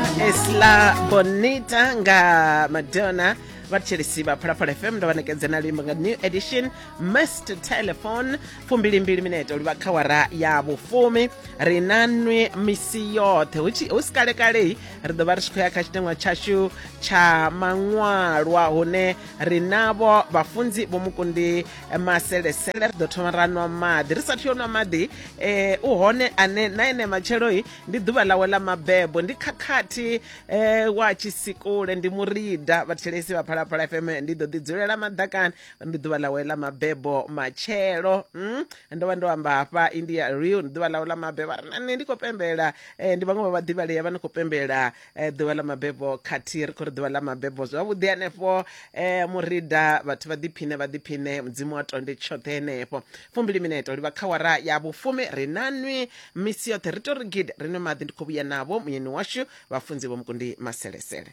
esla bonita nga madonna vhatshilisi vha phalaphala fm ndo vha nekedze na luimbo nga new edition mist telephone fumbilimbili minete uli vha kha wara ya vhufumi ri na nwi misi yoṱhe hu tshi- hu si kalekalei ri ḓo vha ri tshi khou ya kha tshiteṅwa tshashu tsha maṅwalwa hune ri navho vhafunzi vho mukundi maselesele ri ḓo thoma ra nwa maḓi ri sathu yo nwa maḓi eh, u hone ane na ene matshelo-i ndi ḓuvha ḽawe ḽa mabebo ndi khakhathi um wa tshisikule ndi murida vhathelesi vha phalaphala fm ndi ḓo ḓi dzulela maḓakani ndi ḓuvha ḽawe ḽa mabebo matshelo mm? ndo vha ndo amba hafha india real ndi ḓuvha ḽawe ḽa mabebo a ri na nṋe ndi khou pembela um ndi vhaṅwe vha vhaḓivhalea vha ni khou pembela eh, ḓuvha ḽa mabebo khathihi ri khou ri ḓuvha ḽa mabebo zwavhuḓi hanefho eh, murida vhathu vha ḓiphine vha ḓiphine mudzimu wa tonde tshoṱhe henefho fumbili mineto livha kha wara ya vhufumi ri na nwi misi yoṱhe ri to ri gidi ri nwe maḓi ndi khou vhuya navho muyeni washu vhafunzi vho mukundi maselesele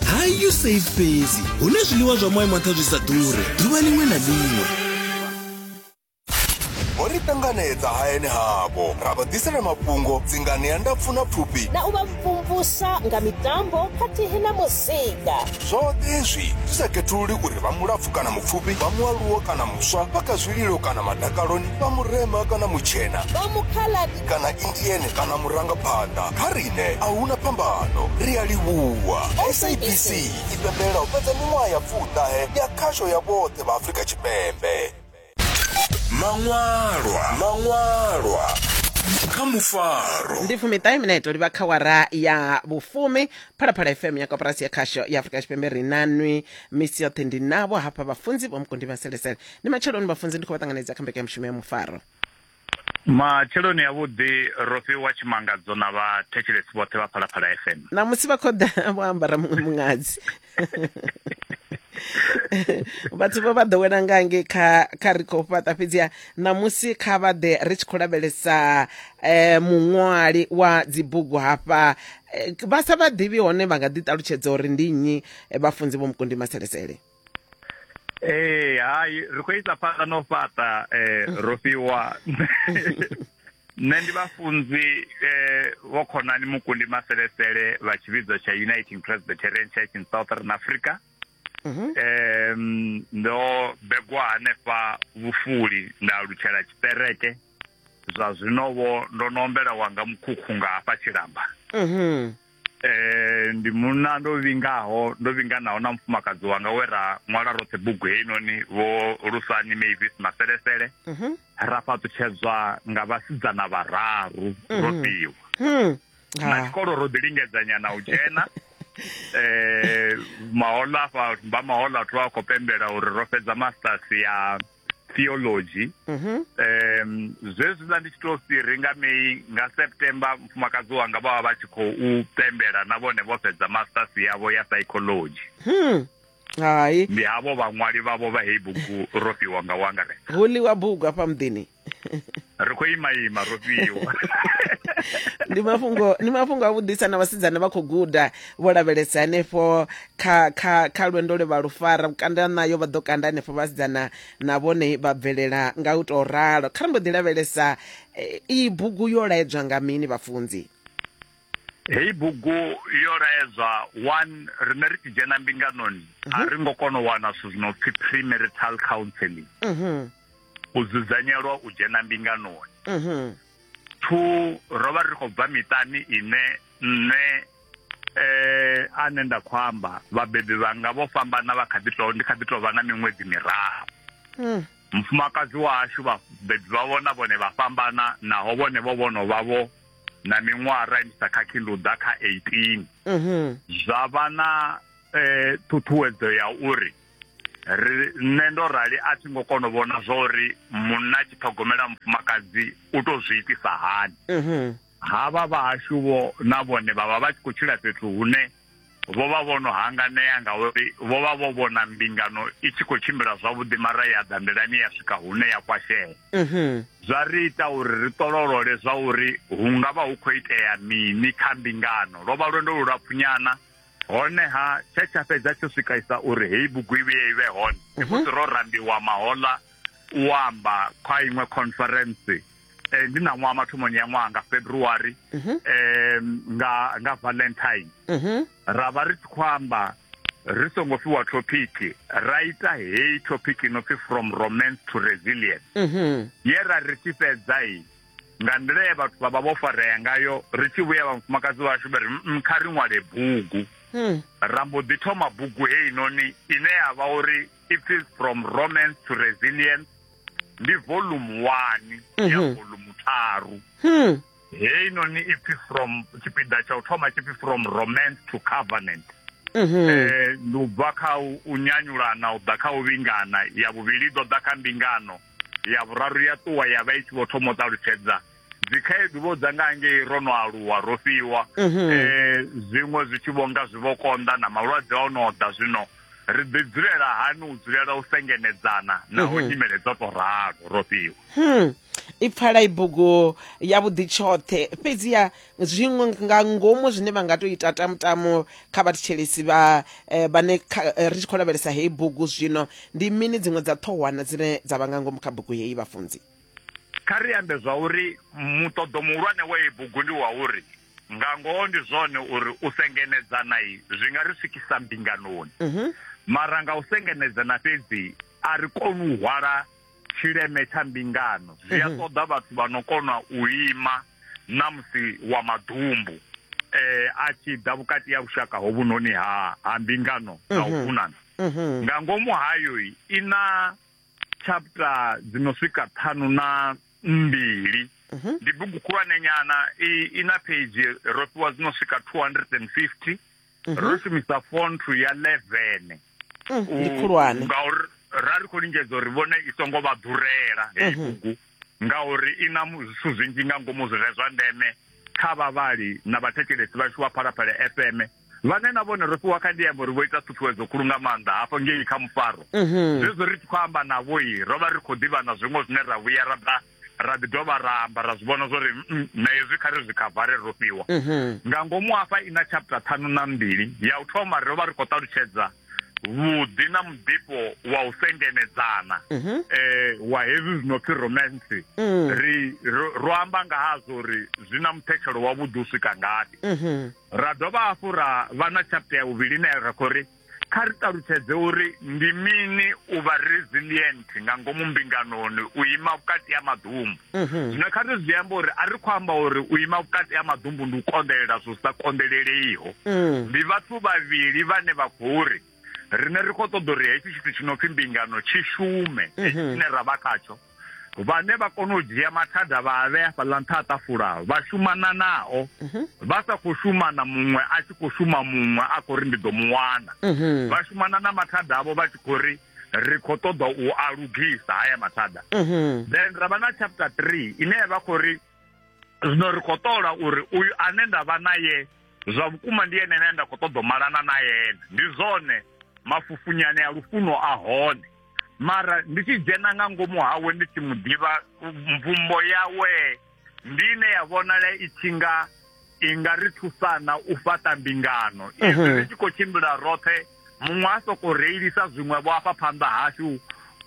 hi usafe fhedzi hune zwiḽiwa zwa moya maṱha zwi sa ḓure ḓuvha ḽiṅwe na ḽiṅwe ho ri ṱanganedza hayani havho ra vha ḓisela mafhungo dzingani ya ndapfu na pfufhi na u vha mvumvusa nga mitambo khathihi na muzika zwoṱhe hezwi zwi sa khethululi uri vha mulapfu kana mupfufhi vha mualuwo kana muswa vha kha zwililo kana madakaloni vha murema kana mutshena vha mukhala kana indiene kana murangaphanḓa kha riṋe a huna phambano ri a livhuwa sabc i pembelela u fhedza miṅwaha ya pfuṱahe ya khasho ya vhoṱhe vha afrika tshipembe maṅwalwa maṅwalwa kha mufaro ndi fumiṱahe mineto livha kha wara ya vhufumi phalaphala fm ya koporasi ya khasho ya afurika tshipembe ri nanwi misi yoṱhe ndi navho hafha vhafunzi vho mukundi vhaselesele ndi matsheloni vhafunzi ndi khou vha ṱanganedza kha mbekanyamushumo ya mufaro Matsheloni avhuḓi ro fhiwa tshimangadzo na vha thetshelesi vhoṱhe vha Phalaphala FM. Ṋamusi vha khoḓa vho ambara muṅwe muṅadzi. vhathu vho vha ḓowela nga nge kha kha ri khou fhaṱa fhedziha ṋamusi kha vha ḓe ri tshi khou lavhelesa um muṅwali wa dzibugu hafha eh, vha sa vha ḓivhi hone vha nga ḓi ṱalutshedza uri ndi nnyi eh, vhafunzi vho mukundi maselesele ee hai ri khou isa phanḓa no fhaṱa um ro fhiwa nṋe ndi vhafunzi um vho khonani mukundi maselesele vha tshivhidzo tsha uniting presbyterian church in southern africa mhm. um ndo begwa hanefha vhufuli nda alutshela tshiṱereke zwa zwino vho ndo no ombela wanga mukhukhu nga hafha tshilamba mhm. eh ndi munna ndo vhingaho ndo vhinganaho na mufumakadzi wanga we ra ṅwala roṱhe bugu heinoni vho lusani mavis maselesele mhm. ra fhaṱutshedzwa nga vhasidzana vhararu mhm. ro fhiwa hmm. na ah. tshikolo ro ḓi lingedzanyana u dzhena eh mahola fa ba mahola thu a khou pembela uri ro fhedza masters ya theology mhm. um zwezwiḽa ndi tshi to si ri nga mei nga september mufumakadzi wanga vha vha vha tshi khou pembela na vhone vho fhedza masters yavho ya psychology hmm. hai ndi havho vhaṅwali vhavho vha heyi bugu ro fhiwa nga wangaret hu ḽiwa bugu afha muḓini ri khou ima ima ro fhiwa ndi mafhungo ndi mafhungo a vhuḓisa na vhasidzana vha khou guda vho lavhelesa hanefho kha kha kha lwendo lwe vha lu fara vhukanda nayo vha ḓo kanda hanefho vhasidzana na vhone vha bvelela nga u tou ralo kha ri mbo ḓi lavhelesa eh, iyi bugu yo laedzwa nga mini vhafunzi heyi bugu yo laedzwa one rine ri tshi dzhena mbinganoni mhm. a ri ngo kona u wana zwithu zwino pfhi premarital counseling mhm. u dzudzanyelwa u dzhena mbinganoni mhm. two ro vha ri khou bva miṱani ine nṋe eh ane nda khou amba vhabebi vhanga vho fhambana vha kha ḓi to ndi kha ḓi to vha na miṅwedzi miraru hmm. mufumakadzi washu vhabebi vha vhona vhone vha fhambana naho vhone vho vhono vha vho na miṅwaha ra imisa kha khilunḓa kha 18 mhm. zwa vha na eh ṱhuṱhuwedzo ya uri ri nṋe ndo rali a thi ngo kona u vhona zwa uri munna a tshi ṱhogomela mufumakadzi u to zwi itisa hani mhm. havha vhahashu vho na vhone vha vha vha tshi khou tshila fhethu hune vho vha vho no hanganea ngauri vho vha vho vhona mbingano i tshi khou tshimbila zwavhuḓi mara ya ḓa nḓilani ya swika hune ya kwashea mhm. zwa ri ita uri ri ṱololole zwa uri hu nga vha hu khou itea mini kha mbingano lwo vha lwendo lu lapfunyana honeha tshe tsha fhedza tsho swikaisa uri heyi bugu i vhuye i vhe hone ndi mhm. musi ro rambiwa mahoḽa u amba kha iṅwe conference eh, ndi na ṅwaha mathomoni ya ṅwaha nga february mm -hmm. eh, nga nga valentine mm -hmm. ra vha ri tshi khou amba ri songo fiwa thopiki ra ita heyi thopiki no pfi from romance to resilience mm -hmm. ye ra ri tshi fhedza i nga nḓila ye vhathu vha vha vho farea ngayo ri tshi vhuya vhafumakadzi vhashu vha ri mm, kha ri ṅwale bugu hmm. ra mbo ḓi thoma bugu heinoni ine ya vha uri it is from romance to resilience ndi volume 1 ya mhm. volume 3 hmm. heyi noni ipfi from tshipiḓa tsha u thoma tshipfi from romance to covenant mhm. eh, ndi u bva kha u nyanyulana u ḓa kha u vhingana ya vhuvhili ḓo ḓa kha mbingano ya vhuraru ya ṱuwa ya vha i tshi vho thoma u ṱalutshedza dzikhaedu vho dza nga ngei ro no aluwa ro fhiwa mhm. eh, zwiṅwe zwi tshi vho nga zwi vho konḓa na malwadze o no ḓa zwino ri ḓi dzulela hani u dzulela u sengenedzana naho mhm. nyimele dzo to ralo ro fhiwa hmm. i pfala i bugu yavhuḓi tshoṱhe fhedziha zwiṅwe nga ngomu zwine vha nga to ita tamutamu kha vhathetshelesi vha eh, vhane eh, ri tshi khou lavhelesa heyi bugu zwino ndi mini dziṅwe dza ṱhohwana dzine dza vha nga ngomu kha bugu heyi vhafunzi Kha ri ambe zwa uri muṱoḓo muhulwane wa iyi bugu ndi wa uri nga ngoho ndi zwone uri u sengenedzana zwi nga ri swikisa mbinganoni mhm. mara nga u sengenedzana fhedzi a ri koni u hwala tshileme tsha mbingano zwi a mhm. ṱoḓa vhathu vha no kona u ima na musi wa maḓumbu eh a tshi ḓa vhukati ya lushaka hovhunoni ha ha mbingano na u mhm. funana nga ngomu hayo i na Chapter dzi no swika ṱhanu na mbili mhm. ndi bugu khulwane nyana i na page ro fhiwa dzi no swika 250 mhm. ro shumisa font ya 11 mm, ndi khulwane ngauri ra ri khou lingedza uri vhone i songo vha ḓurela heyi mhm. bugu ngauri i na zwithu zwinzhi nga ngomu zwire zwa ndeme kha vhavhali na vhathetshelesi vhashu vha phalaphala fm vhane na vhone ro fhiwa kha ndiambo ri vho ita ṱhuṱhuwedzo khulu nga maanḓa hafho ngei kha mufaro mhm. zwezwo ri tshi khou amba navhoi ro vha ri khou ḓivha na zwiṅwe zwine ra vhuya ra ḓa ra ḓi dovha ra amba ra zwi vhona zwo ri mm, na hezwi kha ri zwi khavare ro fhiwa mhm. nga ngomu hafha i na chapter ṱhanu na mbili ya u thoma ro vha ri khou ṱalutshedza vhuḓi na muḓifho wa u sengenedzana um mhm. eh, wa hezwi zwino pfi romance mm. ri ro amba nga hazwo uri zwi na muthetshelo wavhuḓi u swika ngafhi Ra dovha hafhu ra vha na chapter ya vhuvhili ine ra khou ri kha ri ṱalutshedze uri ndi mini u vha resilient nga ngomu mbinganoni u ima vhukati ha maḓumbu mhm. zwino kha ri zwi amba uri a ri khou amba uri u ima vhukati ha maḓumbu ndi u konḓelela zwo sa konḓeleleiho mm. ndi vhathu vhavhili vhane vha khou ri rine ri khou ṱoḓa uri hetshi tshithu tshi no pfhi mbingano tshi shume mhm. tshine ra vha khatsho vhane vha kona u dzhia mathada vha a vhea fhaḽa nṱha a ṱafula vha shumana nao mhm. vha sa khou shumana muṅwe a tshi khou shuma muṅwe a khou ri ndi ḓo mu wana mhm. vha shumana na mathada avho vha tshi khou ri ri khou ṱoḓa u a lugisa haya mathada then ra vha na chapter three ine ya vha khou ri zwino ri khou ṱola uri uyu ane nda vha naye zwa vhukuma ndi ene ane nda khou ṱoḓa u malana na yene ndi zwone mafufunyane a lufuno a hone mara ndi tshi dzhena nga ngomu hawe ndi tshi mu ḓivha mvumbo yawe ndi ine ya vhonala i tshi nga i nga ri thusana u fhaṱa mbingano izwi mhm. ri tshi khou tshimbila roṱhe muṅwe a sokou reilisa zwiṅwevho afha phanḓa hashu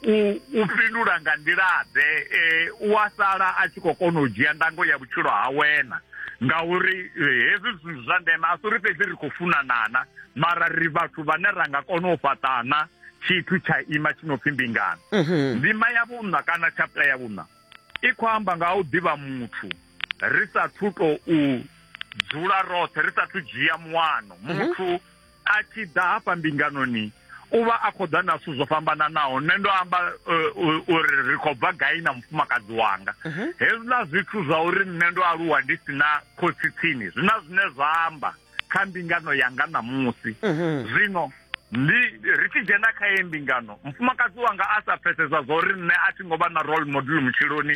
u fhindula nga nḓilaḓe e, u a sala a tshi khou kona u dzhia ndango ya vhutshilo ha wena ngauri e, hezwi zwithu zwa ndeme a si uri fhedzi ri khou funanana mara ri vhathu vhane ra nga kona u fhaṱana tshithu tsha ima tshi no pfhi mbingano mhm. ndima ya vhuṋa kana chapter ya vhuṋa i khou amba nga u ḓivha muthu ri sa thu tou dzula roṱhe ri sa thu dzhia muwano mhm. muthu a tshi ḓa hafha mbinganoni u vha a khou ḓa na zwithu zwo fhambananaho nṋe ndo amba eh, uri ri khou bva gai na mufumakadzi wanga mhm. hezwiḽa zwithu zwa uri nṋe ndo aluwa ndi si na khotsi tsini zwi na zwine zwa amba kha mbingano yanga ṋamusi mhm. zwino ndi ri tshi dzhena kha ye mbingano mufumakadzi wanga a sa pfesesa zwa uri nṋe a thi ngo vha na role model vhutshiloni